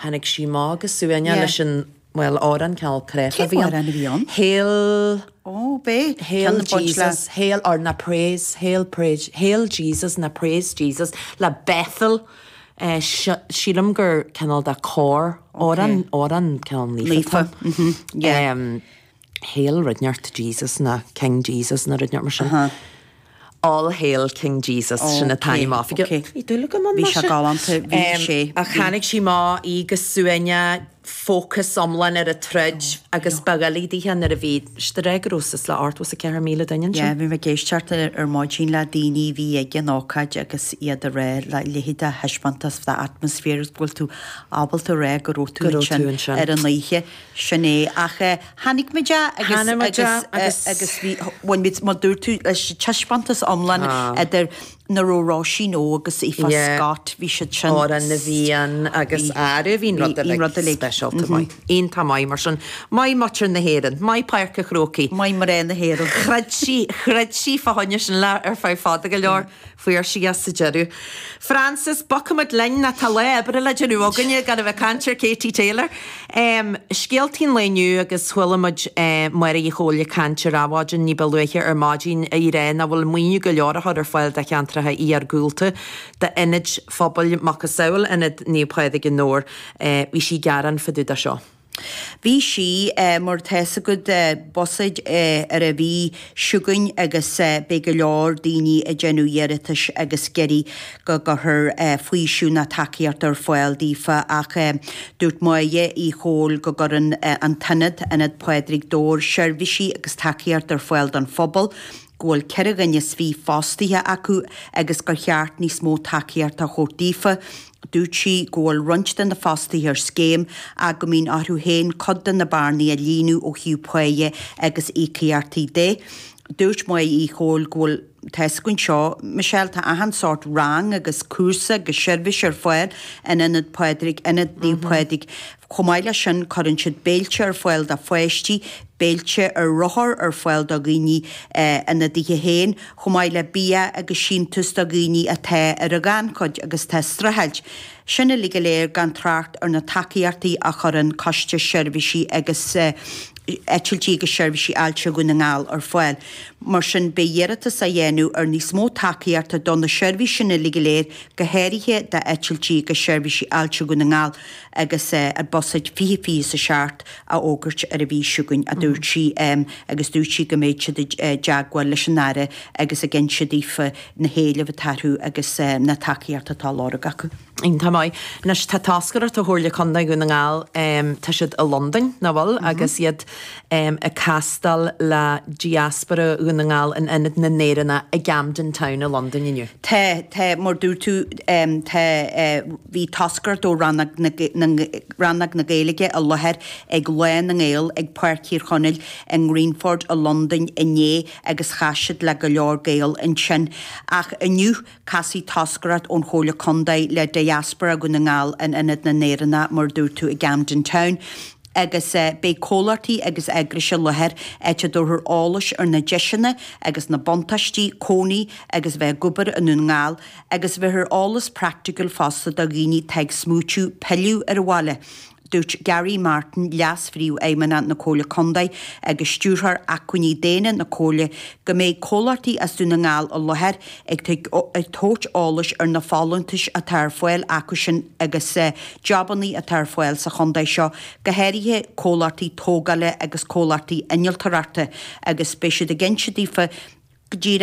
Tháinig sí amach go suaimhneach leis an, bhuel, amhrán cineál cráifeach a bhí ann. Cén amhrán a bhí ann? Hail. Ó, b'é. Hail Jesus, hail or nó praise, hail praise, hail Jesus nó praise Jesus le Bethel sílim gur cineál de chór, amhrán cineál naofa. Naofa, yeah. Hail rud inteacht Jesus nó King Jesus nó rud inteacht mar sin. All Hail King Jesus sin an t-ainm oifigiúil. Ok, ok. Bhí dúil agam ann, bhí sé. Bhí sé galánta, bhí sé. Ach tháinig sí amach go suaimhneach, fócas iomlán ar an troid agus ba dhoiligh dithe nuair a bhí, is de réir go raibh suas le 84,000 duine ansin. Yeah, bhí mé ag éisteacht ar maidin le daoine a bhí ag an ócáid agus iad ag rá a leithéid de thaispeántas, de atmaisféar agus go bhfuil tú ábalta a rá go raibh tú ansin ar an oíche. Sin é, ach eh chonaic muid a agus chonaic muid a agus agus. agus bhí bhain muid mar dúirt tú leis an taispeántas iomlán Tá. idir na raibh Róisín Ó agus Aoife Yeah. Scott, bhí siad sin. Amhrán na bhFiann agus Bhí- air a bhín bhí- rud bhí rud a uilig. speisialta maith. Iontach maith mar sin. Maith muintir na hÉireann, maith Páirc an Chrócaigh. Maith mná na hÉireann. Throid sí throid sí fá choinne sin le ar feadh fada go leor. Fuair sí é sa deireadh. Frances, bogfaimid linn, nó tá lá oibre le déanamh againne gan a bheith ag caint ar Katie Taylor. Scéaltaí an lae inniu agus chuala muid Máire Uí Chomhaill ag caint ar Adhmhaidin ní ba luaithe ar maidin í ag rá nach bhfuil maoiniú go leor á chur ar fáil do cheantracha iargúlta, d'ionaid phobail macasamhail Ionad Naomh Pádraig i nDobhar. Bhí sí ag gearán fá dtaobh de seo. Bhí sí mar atá a fhios agat buiséad ar an mhí seo chugainn agus beidh go leor daoine ag déanamh iarratais agus ag iarraidh go gcuirfear faoiseamh nó tacaíocht ar fáil daofa ach dúirt Máire Uí Chomhaill go gcuireann an t-ionad, Ionad Phádraig Dobhair, seirbhísí agus tacaíocht ar fáil don phobal, go bhfuil ceithre dhuine 's fiche fostaithe acu agus gur cheart níos mó tacaíocht a thabhairt daofa. Dúirt sí go bhfuil roinnt de na fostaithe ar scéim ach go mbíonn orthu féin cuid de na bearnaí a líonadh ó thaobh páighe agus íocaíochtaí de. Dúirt Máire Uí Chomhaill go bhfuil tá a fhios againn seo, Michelle, tá achan sórt rang agus cúrsa agus seirbhís ar fáil in Ionad Phádraig, Ionad Naomh Pádraig. Chomh maith leis sin cuireann siad béilte ar fáil do pháistí, béilte ar rothar ar fáil do dhaoine ina dtithe féin, chomh maith le bia agus síntiús do dhaoine atá ar an ghannchuid agus atá ag streachailt. Sin uilig go léir gan trácht ar na tacaíochtaí a chuireann Coiste Seirbhísí agus Eitiltí agus Seirbhísí Ailse Dhún na nGall ar fáil. Mar sin beidh iarratas á dhéanamh ar níos mó tacaíochta do na seirbhísí sin uilig go léir, go háirithe d'Eitiltí agus Seirbhísí Ailse Dhún na nGall, agus é ar buiséad fiche fiche is a seacht a fhógairt ar an mhí seo chugainn, a dúirt sí, agus dúirt sí go mbeidh siad i dteagmháil leis an Aire agus ag inse daofa na héilimh atá acu agus na tacaíochta atá á lorg acu. Iontach maith. Anois, tá toscaireacht ó Chomhairle Contae Dhún na nGall, tá siad i Londain, nach bhfuil, agus iad ag castáil le diaspora Dhún na nGall in Ionad na nÉireannach i gCamden Town i Londain inniu. Tá, tá, mar dúirt tú, tá, bhí toscaireacht ó rannóg na, rannóg na Gaeilge i láthair ag Lá na nGael ag Páirc Thír Chonaill i nGreenford i Londain inné agus chas siad le go leor Gael ansin. Ach inniu. Casfaidh toscaireacht ón Chomhairle Contae le Diaspora Dhún na nGall in Ionad na nÉireannach mar a dúirt tú i gCamden Town agus beidh comhlachtaí agus eagrais i láthair áit a dtabharfar eolas ar na deiseanna agus na buntáistí cónaí agus a bheith ag obair i nDún na nGall agus bhéarfar eolas practical fosta do dhaoine atá ag smaoitiú pilleadh ar an bhaile. Dúirt Gary Martin, Leas-Phríomhfheidhmeannach na Comhairle Contae agus Stiúrthóir Acmhainní Daonna na Comhairle, go mbeidh comhlachtaí as Dún na nGall i láthair ag tabhairt eolais ar na folúntais atá ar fáil acusan agus jabannaí atá ar fáil sa chontae seo, go háirithe comhlachtaí tógála agus comhlachtaí innealtarachta, agus beidh siad ag inse daofa goidé